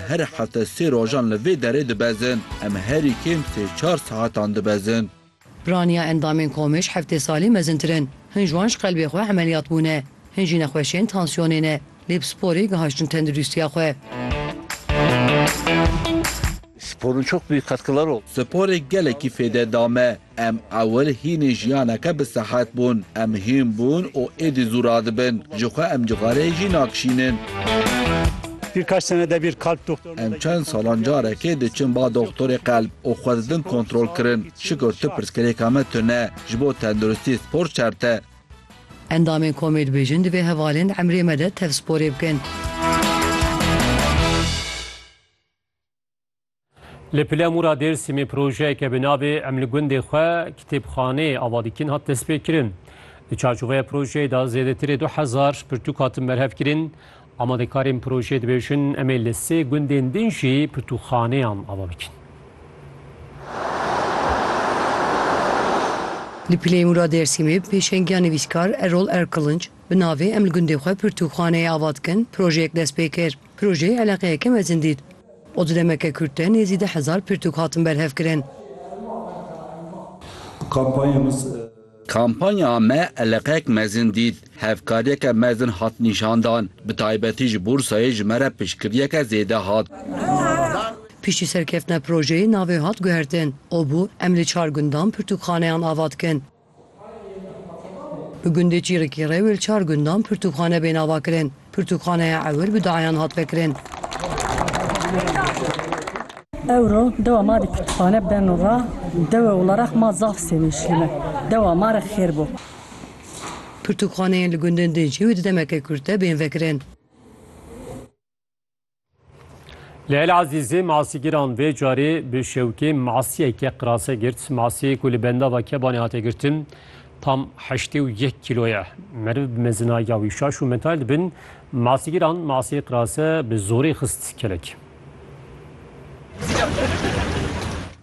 Her hefte sê rojan li vê derê dibezin. Em herî kêm sê çar saetan dibezin. Piraniya endamên komê ji heftê salî mezintir in. Hin ji wan ji qelbê xwe emeliyat bûne. Hin jî nexweşiyên tansiyonê ne. Lê bi sporê gihiştin tendurîstiya xwe. Sporun çok büyük katkıları oldu. Sporê gelekî fêde da me. Em ewil hînê jiyaneke bi sehet bûn. Em hîn bûn û êdî zû radibin. Ji xwe em cixareyê jî nakişînin. Em çend salan carekê diçin ba doxtorê qelb û xwe didin kontrolkirin. Şikir tu pirsgirêka me tune. Ji bo tenduristî spor şert e. Endamên komê dibêjin divê hevalên emrê me de tevsporê bikin. Li Pilemûra Dêrsimê projeyeke bi navê Em li gundê xwe kitêbxaneyê ava dikin hat destpêkirin. Di çarçoveya projeyê de zêdetirê du hezar pirtûk hatin berhevkirin. Amadekarên projeyê dibêjin em ê li sê gundên din jî pirtûkxaneyan ava bikin. Li Pilemûra Dêrsimê pêşengiya nivîskar Erol Erkilunc bi navê Em li gundê xwe pirtûkxaneyê ava dikin projeyek dest pê kir. Projeyê eleqeyeke mezin dît. O di demeke kurt de nêzî deh hezar pirtûk hatin berhevkirin. Kampanya me eleqeyek mezin dît. Hevkariyeke mezin hat nîşandan. Bi taybetî ji Bûrsayê ji me re piştgiriyeke zêde hat. Piştî serkeftina projeyê navê hat guhertin. O bû em li çar gundan pirtûkxaneyan ava dikin. Bi gundê Çîrikê re wê li çar gundan pirtûkxane bên avakirin. Pirtûkxaneya ewil bi dayan hat vekirin. Ewro dewa ma di pirtûkxane beno ra dewê Ularex ma zaf sevinçlî me. Dewa ma re xêr bo. Pirtûkxaneyên li gundên din jî wê di demeke kurt de bên vekirin. Leyl Azîzê masîgiran vê carê bi şewkê masiyeke qirase girt. Masiyê ku li bendava Kebanê hate girtin tam heştê û yek kîlo ye. Meriv bi mezina ya wî şaş û metal dibin. Masîgiran masiyê qirase bi zorê xist kelek.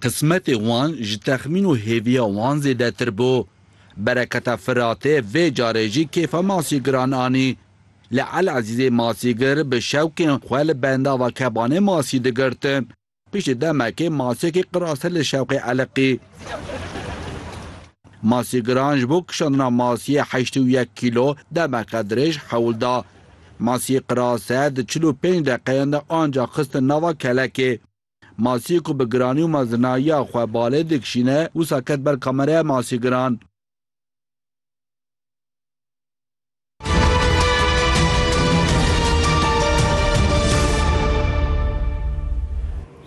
Qismetê wan ji texmîn û hêviya wan zêdetir bû. Bereketa Firatê vê carê jî kêfa masîgiran anî. Lê Eliezîzê masîgir bi şewqê xwe li bendava kebanê masî digirt. Piştî demekê masîyekê qira ser li şewqê Eliqî. Masîgiran ji bo kişandina masîyê heştê û yek kîlo demeke dirêj hewl da. Masîyê qira ser di çil û pênc deqeyan de anca xistin nava kelekê. Masîyê ku bi giranî û mezinayiya xwe balê dikişîne wisa ket ber kameraya masîgiran.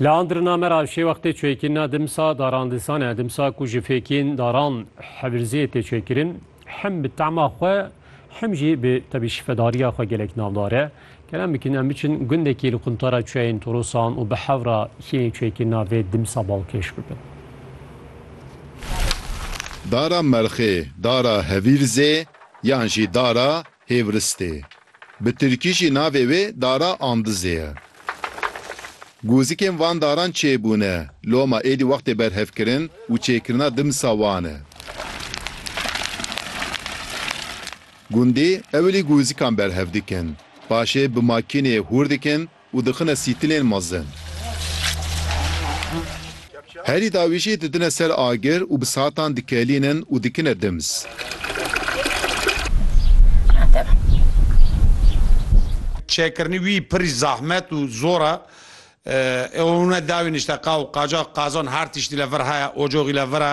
Li Andirina me re şê wextê çêkîn ne dimsa darandisan e dimsa ku ji fêkîn daran hebirziyê tê çêkirin hem bi tema xwe hem jî bi tebî şifedariya xwe gelek navdar e. Kerem bikin em biçin gundekî li quntara çiyayên Torosan û bi hevra hînê çêkîna vê dimsa balkêş bibin. Dara Merxê, Dara Hebîrzê, Yan jî Dara Hêvristê. Bi tirkî jî navê wê Dara Andizê ye. Gozikên van daran çêbûne, loma êdî wextê berhevkirin û çêkirina dimsa wan e. Gundî ewilî gozikan berhev dikin, paşê bi makînê hûr dikin, Û dixine sîtilên mezin. Herî dawî jî didine ser agir û bi satan dikelînin û dikine dimz. Çêkirinî wî pirî zahmet û zor e. Ewone dawî nişte qaw, qacaq, qazan her tiştîle vir heye, ocoxîle vir e.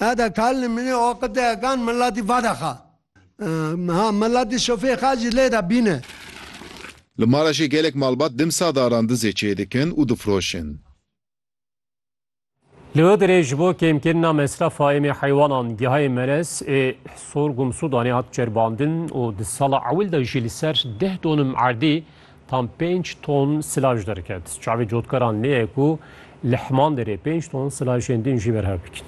Ew de kal li minê o qiteye kan miletî vade xa. Ha miletî şofê xa jî lê de bîne. Li Maraşê gelek malbat dimsa daran dizê çê dikin û difiroşin. Li Iğdırê ji bo kêmkirina mesrefa êmê heywanan gehayê merez ê Sorgum Sudanê hat çerbandin û di sala ewil de jî li ser deh donim erdî Tam pênc ton silaj derket. Çavê cotkaran nê ye ku li Hemandêrê pênc ton silajên din jî berhev bikin.